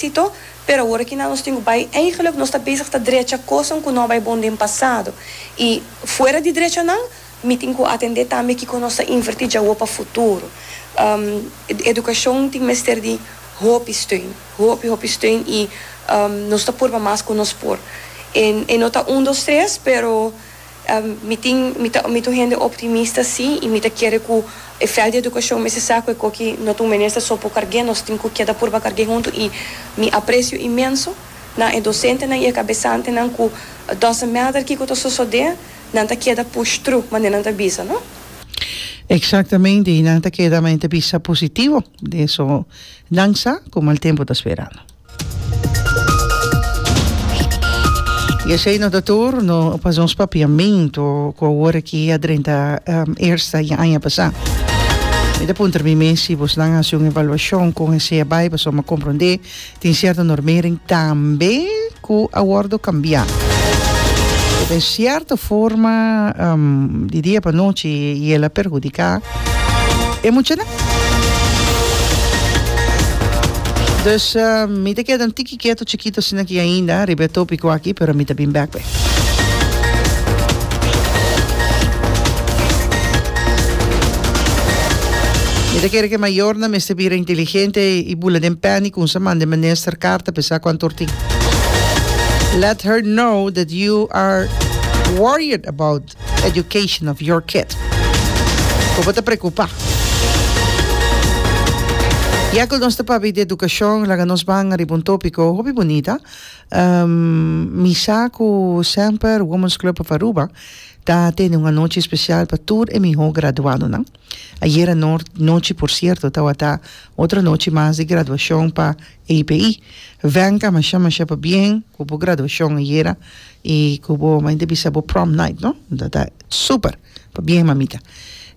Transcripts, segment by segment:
Tito, Pero awor aki nan nos tin cu bay, eigenlijk nos ta bezig ta drecha coson cu no a bay bon den pasado. Y fuera di drecha nan, mi tin cu atende tambe kico nos ta inverti djawoe pa futuro. Educacion tin mester di hopi steun, hopi hopi steun y nos ta purba mas cu nos por. E no ta un dos tres, pero. Mi tin, mi ta, mi ta un hende optimista sí, i mi ta kere ku e vèlt di edukashon mester sa ku e koki no ta un minister so por karg'é, nos tin ku keda purba karg'é huntu i mi apresio inmenso na e dosentenan i e kabesantenan ku doesn't matter kiko ta sosodé nan ta keda push through manera nan ta bisa, no? Eksaktamente, i nan ta keda manera nan ta bisa positivo den esun nan sa ku mal tempu ta sperando. Y esey no ta tur, no a pas nos papiamento cu awor aki a drenta eersta di aña pasa. Mi ta puntra mi mes si bos nan a haci un evaluacion con e sea bay pasobra mi a comprende tin cierto normering tambe cu a wordo cambia. Den cierto forma di dia pa nochi y el a perhudica. e muchanan. Dus mi ta keda un tiki ketu chikito asina aki ainda riba e topiko aki pero mi ta bin bek wei. Mi ta kere ku e mayornan mester bira inteligente i bula den pèni kousa manda e minister karta p'e sa ku a tortin. Let her know that you are worried about best education of your kid. Cu bo ta preocupa. Ya cu nos ta pabi di educacion, laga nos ban riba un topico hopi bunita. Um, mi sa cu semper Women's Club of Aruba ta tene un anochi special pa tur e miho graduadonan. Ayer anochi, por cierto, tawata otro anochi mas di graduacion pa API. Venka masha masha pabien cu bo graduacion ayer. y cu bo maña bisa bo prom night no ta ta super pa bien mamita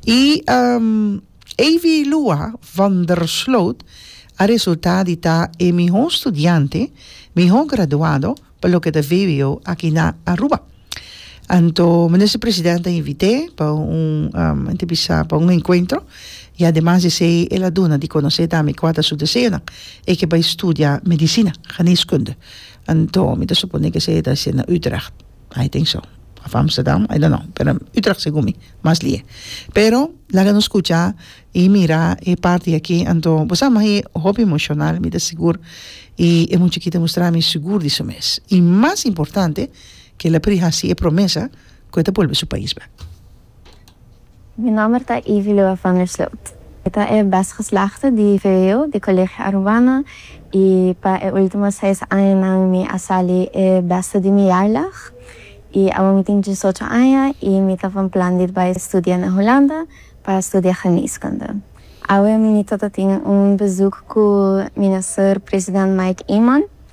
y Avy Lua van der Sloot a resulta di ta e miho studiante miho graduado pa loke ta VWO aki na Aruba anto Minister President a invite pa un maña ta bisa pa un encuentro y ademas di esey el a duna di conoce tambe cua ta su deseonan e ke bay studia medicina geneskunde Anto mi ta suponé ke esei e ta hasié na Utrecht. I think so. Of Amsterdam, I don't know. Pero Utrecht segun mi, mas lié. Pero laga nos skucha i mira e parti aki, anto bo sa mas e hopi emoshonal, mi ta sigur. I e muchachita a mustra mi sigur di su mes. I mas importante, ke el a pri hasi e promesa ku e ta bolbe su pais bek. Mi nòmber ta Ivy Lua van der Sloot. Mi ta e bèst geslachte di vvo di Colegio Aruana i pa e último seis añanan mi a sali e bèste di mi jaarlag. I awor mi tin diesocho aña i mi ta van plan di bai studia na Hulanda pa studia geneeskunde. Awe mi ta tin un bezoek ku Minister President Mike Eman